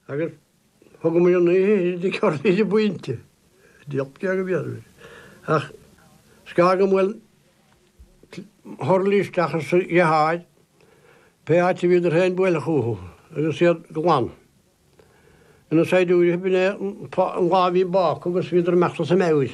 agus thugamar an oíche sin ag cur idir buíonta, díolt beag a bhí orm air, ach scar go mbuail Hurley isteach ar sa ghearr, pé áit a bhí idir féin buailfeadh uathu, agus iad glan. Ina saighdiúirí b'in é an lá a bhí bác agus bhíodar ag imeacht as a meabhair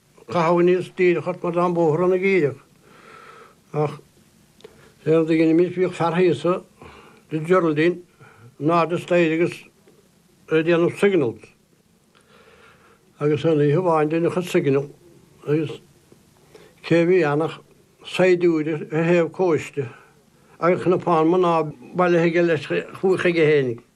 Chaitheamar níos díreach ort mar tá an bóthar ann ag iarraidh ach deir an duine mín is bhíodh fear thíosa de Geraldine in airde staighre agus ag déanamh signals agus an oíche bhain duine a chuid signal agus cé a bhí ann ach saighdiúir ar thaobh cóiste agus cnapán mná bailithe aige leis chuige féin.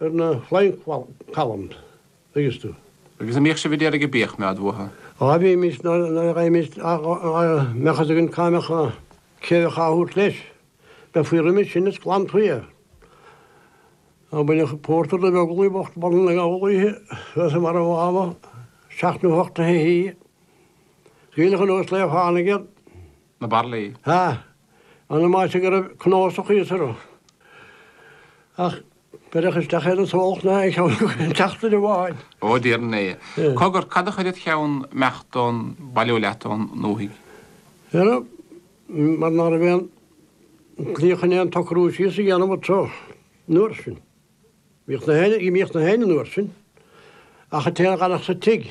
ar na flying columns, dtuigeann tú. Agus a' mbíodh sibh a' d'iarraidh a' bíodh mé a'd uathu? Á bhímis, nuair a bheimis a' dhá mbeadh fhios againn cá mbeadh a, cé a bheadh á thabhairt leis, bheifí roimis sin is glanfaí é. Á baineadh pórtar de Bheaglaí bocht Bhaile na nGall oíche, thuas i mbarra an Mháma, seacht nó hocht a' hoíche. Scaoileadh anuas le fánaidh iad. na baraillí. Ha! Ambaiste go raibh cnósach thíos orthu. Ach beireadh isteach é do smólach ná ag ceann tseachtaine amháin. Ó, a Thiarna! Cogar, cad a chuir id cheann 'meacht do'n bailiú leat ó'n ndúthaigh? Dheara, mar ná raibh aon tslí chun aon tsocrú síos a dhéanamh anso an uair sin. D'imíodh na héinne, d'imíodh na héinne an uair sin, ach an té a dh'fhanfadh sa tigh.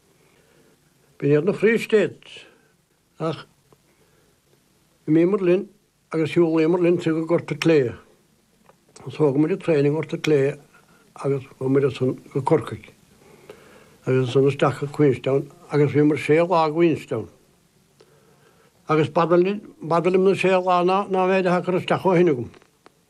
Ba iad na Free States, ach d'imíomar linn agus shiúlaíomar linn go Gort an tSléibhe. Thógamar an traein i nGort an tSléibhe agus chuamar ansan go Corcaigh agus ansan isteach go Queenstown agus bhíomar sé lá i gQueenstown. Agus b'fhada liom na sé lá ná an méid atá curtha isteach ó shin agam.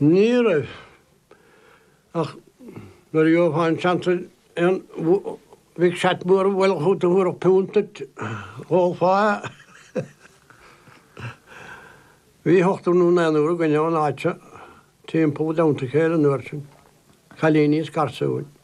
Ní raibh. Ach nuair a gheofá an seans ar aon bhig shot mór a bhualadh chugat a thabharfadh punt duit, thógfá é. Bhí hochtar nó naonúr againn ón áit seo timpeall i dteannta a chéile an uair sin, cailíní is garsúin.